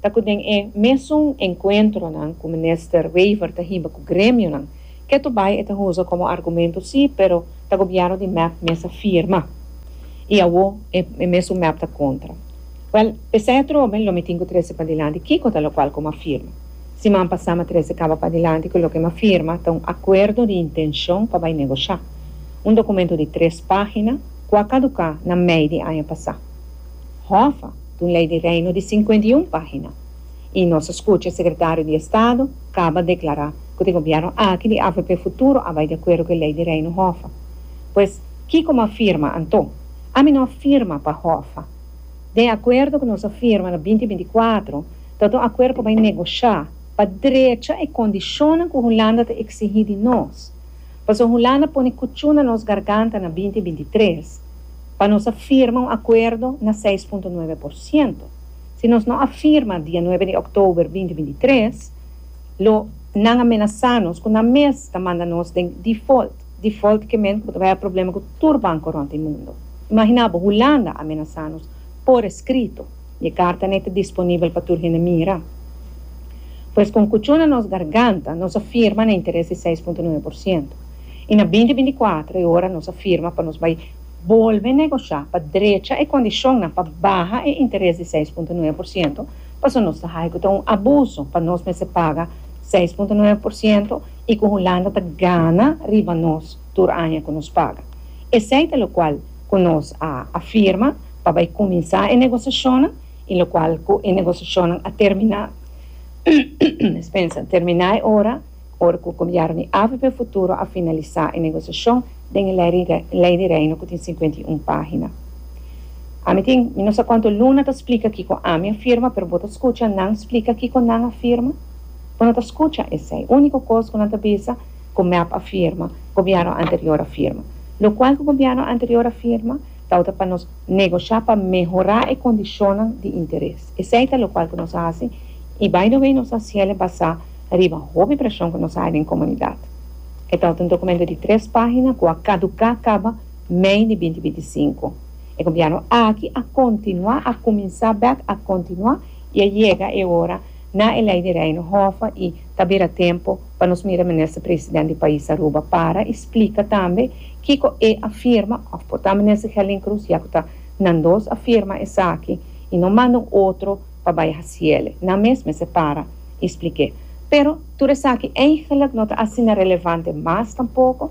Ta cu den e mesun encuentronan cu Minister Wever ta hiba cu gremionan, ketu bay e ta huza como argumento si, pero ta gobierno di mep mes a firma. Y awo e mesun mep ta contra. Wel, p'esey atrobe lo mi tin cu trece padilanti kico ta locual cu m'a firma. Siman pasá m'a trece caba padilanti cu loke m'a firma ta un acuerdo di intencion pa bay negociá. Un documento di tres pagina cu a caducá na mei di aña pasá. Hoffa! Ta un ley di reino di cincuenta y un pagina y nos a scucha secretario di estado caba declara cu te gobierno aki di avp futuro a bay di acuerdo cu e ley di reino hoffa. Pues kico m'a firma anto? Ami no a firma pa hoffa. Den e acuerdo cu nos a firma na binti binti cuatro ta ta un acuerdo pa bay negocia pa drecha e condicionnan cu Hulanda ta exigi di nos. Paso Hulanda pone kuchu na nos garganta na binti binti tres pa nos a firma un akuerdo na seis punto nuebe por siento. Si nos no a firma dia nuebe di òktober binti binti tres, lo nan a menasá nos ku nan mes ta manda nos den default. Default ke men ku ta bai a problema ku tur banko rònt e mundu. Imaginá bo, Hulanda a menasá nos por eskrito. E karta n'e ta disponibel pa tur hende mira. Pues kon kuchó na nos garganta nos a firma na interes di seis punto nuebe por siento. I na binti binti kuater e ora nos a firma pa nos bai bolbe negoshá pa drecha e kondishonnan pa baha e interes di seis punto nuebe por siento paso nos ta ha'i ku ta un abuso pa nos mester paga seis punto nuebe por siento i ku Hulanda ta gana riba nos tur aña ku nos paga. Esei ta lokual ku nos a firma. pa bai kuminsá e negosiashonnan i lokual ku e negosiashonnan a terminá terminá e ora ora ku gobièrnu di avp Futuro a finalisá e negosiashon den e Lei di Reino ku tin sinkuenta i un página. Ami tin mi no sa kuantu luna ta splika kiko ami a firma pero bo ta skucha nan splika kiko nan a firma? Bo no ta skucha esei úniko kos ku nan ta bisa ku mep a firma, gobièrnu anterior a firma. Lokual ku gobièrnu anterior a firma? Tawata pa nos negosha pa mehorá e kondishonnan di interes. Esei ta lokual ku nos a hasi i by the way nos ta hasiel e basá riba hopi preshon ku nos a haña den komunidat. E tawata un dokumento di tres páhina ku a kaduká kaba mei di binti binti i sinku. E gobièrnu aki a kontinuá, a kuminsá bèk a kontinuá i a yega e ora na e Lei di Reino hòf i Ta bira tempu pa nos mira Minister President di pais Aruba para y splica tambe kico e a firma of por ta Minister Gelin Cruz ya cu ta nan dos a firma esaki y no manda un otro pa bay haciele nan mes mester para y splique pero tur esaki eindelijk no ta asina relevante mas tampoco